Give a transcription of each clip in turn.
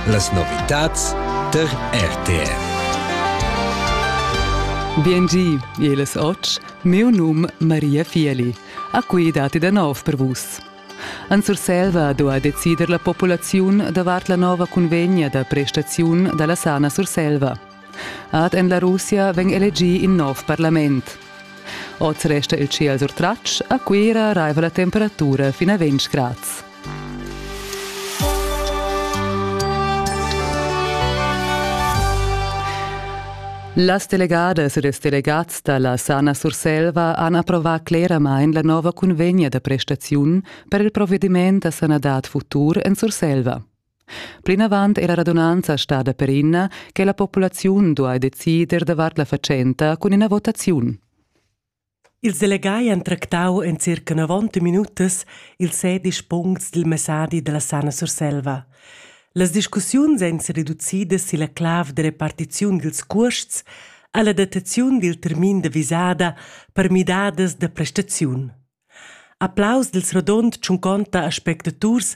Las novitads der RTR. Biengi, eles oc, meu num Maria Fieli, a cui dati da nov per vus. An Surselva do a decider la populaziun davart la nova convegna da prestaziun dalla sana Surselva. Ad en la Russia vegn elegì in nov parlament. Oz resta il ciel surtratg, a Cuira raiva la temperatura fin a 20 grads. Las delegadas e ils delegats da la Sana Surselva han approvà cleramain la nova cunvegna da prestaziun per il provediment da sanadad futur en Surselva. Plinavant è la radunanza stada perina che la populaziun duai decider davart la fatschenta cun ina votaziun. Ils delegai han tractau en circa 90 minutas ils sedisch puncts dil messadi dalla Sana Surselva. Las discussiuns ein sereducidas silla clav de repartiziun dils cuosts alla dataziun dil termin de visada per midadas de prestaziun. Applaus dil rodund tschunconta aspectaturs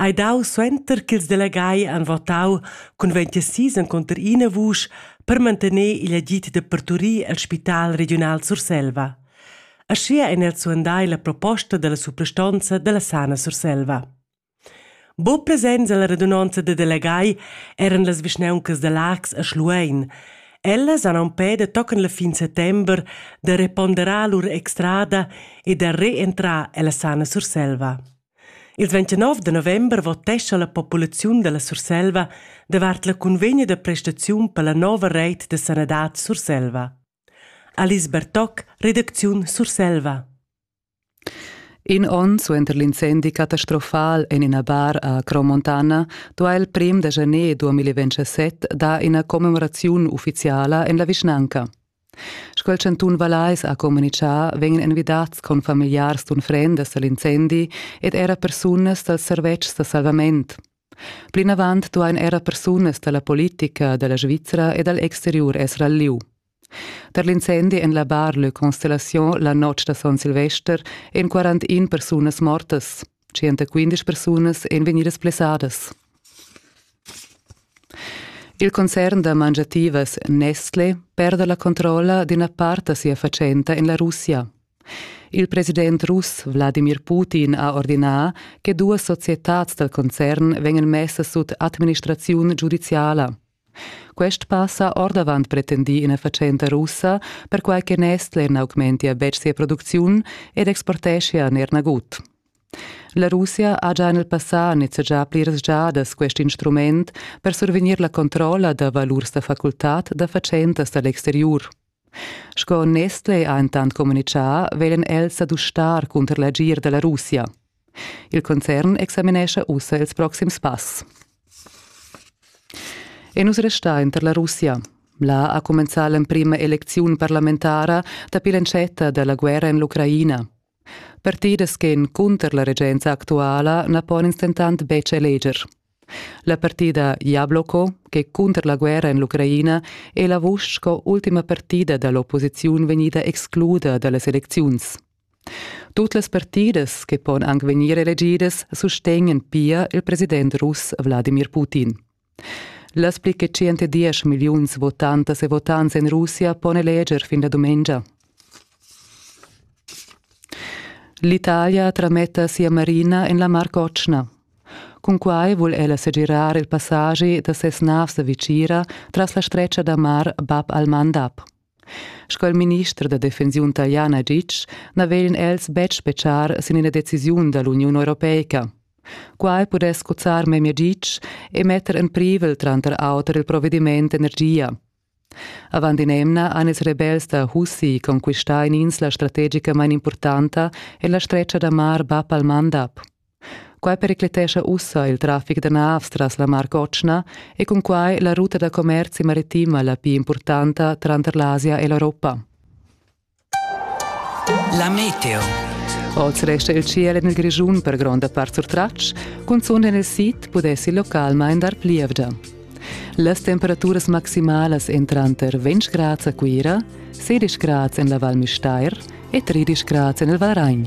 ei dau suenter ch'ils delegai han votau cun ventisis encunter ina vusch per mantener igl agid da parturir el spital regiunal Surselva. Aschia ein els suandai la proposta dalla suprastonza dalla Sana Surselva. Buc presents ella radunonza da delegai eran las vischnauncas da Laax e Schluein. Ellas han empè da tochen la fin settember da reponderar lur extrada e da reentrar ella sana Surselva. Ils 29 de november votescha la populaziun dalla Surselva davart la cunvegna da prestaziun per la nova reit de sanadad Surselva. Alice Bertoc, redacziun Surselva. In onn suenter l'incendi catastrofal en ina bar a Cromontana duha il prim da janer 2027 dar ina commemoraziun uffiziala en la vischnanca. Sco il chantun Vallais ha communitgà, vegnan envidads confamigliars d'unfrendas a l'incendi ed era persunas dals servetschs da salvament. Plinavant duain era persunas da la politica da la Svizra e dal exteriur esser al lieu. Per l'incendi en la Bar Le Constellation la notg da Son Silvester èn 41 persunas mortas. 115 persunas èn vegnidas blessadas. Il concern da mangiativas Nestle perda la controlla d'ina part da sia fatschenta en la Russia. Il president russ Vladimir Putin ha ordinà che duas societads dal concern vegnan messas sut administraziun giudiziala. Quest pass ha ordavant pretendì ina fatschenta russa, perquai che Nestle n'augmentia betg sia producziun ed exporteschia er nagut. La Russia ha già en il passà nizzegià pliras giadas quest instrument per survegnir la controlla da valurs da facultad da fatschentas da l'exteriur. Sco Nestlé ha entant communitgà, veglan els sa dustar cunter l'agir da la Russia. Il concern examinescha ussa ils proxims pass. E nus restain tar la Russia. Là ha cumenzà l'emprima elecziun parlamentara dapi l'entschatta da la guerra en l'Ucraina. Partidas ch'èn cunter la regenza actuala na pon ins dentant betg eleger. La partida Jabloko, ch'è cunter la guerra en l'Ucraina, è la vusch sco ultima partida da l'opposiziun vegnida excluda da las elecziuns. Tut las partidas che pon anc vegnir elegidas sustegnan pia il president russ Wladimir Putin. Las pli che 110 milliuns votantas e votants en Russia pon eleger fin la dumengia. L'Italia trametta sia marina en la Mar Cotschna. Cunquai vul ella segirar il passagi da ses navs da Vicira tras la stretga da mar Bab al-Mandab. Sco il minister da defensiun taliana ditg, na veglan els betg spetgar sin ina decisiun da l'Uniun europeica. Quai pudess cuzzar memia ditg e metter en privel tranter auter il provediment energia. Avant in'emna han ils rebels da Houthi conquistà in'insla strategica main importanta en la stretga da mar Bab al-Mandab. Quai pericletescha ussa il traffic da navs tras la Mar Cotschna e cunquai la ruta da commerzi maritima la pli impurtanta tranter l'Asia e l'Europa. La meteo. Oz resta il ciel en il Grischun per gronda part surtratg, cunzunt en il sid pudessi il local main dar plievgia. Las temperaturas maximalas èn tranter 20 grads a Cuira, 16 grads en la Val Müstair e 13 grads en il Valragn.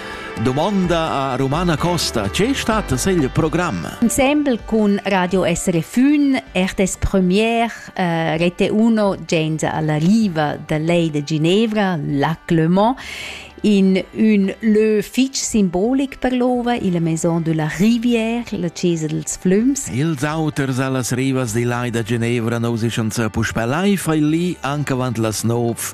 Domanda a Romana Costa. Che stat il programm? Ensemble con Radio SRFün, RTS Premier, eh, Rete 1, gens alla riva da lei de Ginevra, Lac Le Mans, in un lieu fitg simbolic per l'ova, la Maison de la Rivière, la Chiesa dels Flums. Ils auters allas rivas di lai da Genevra non si schon sa puspelai fai lì anche avant las nov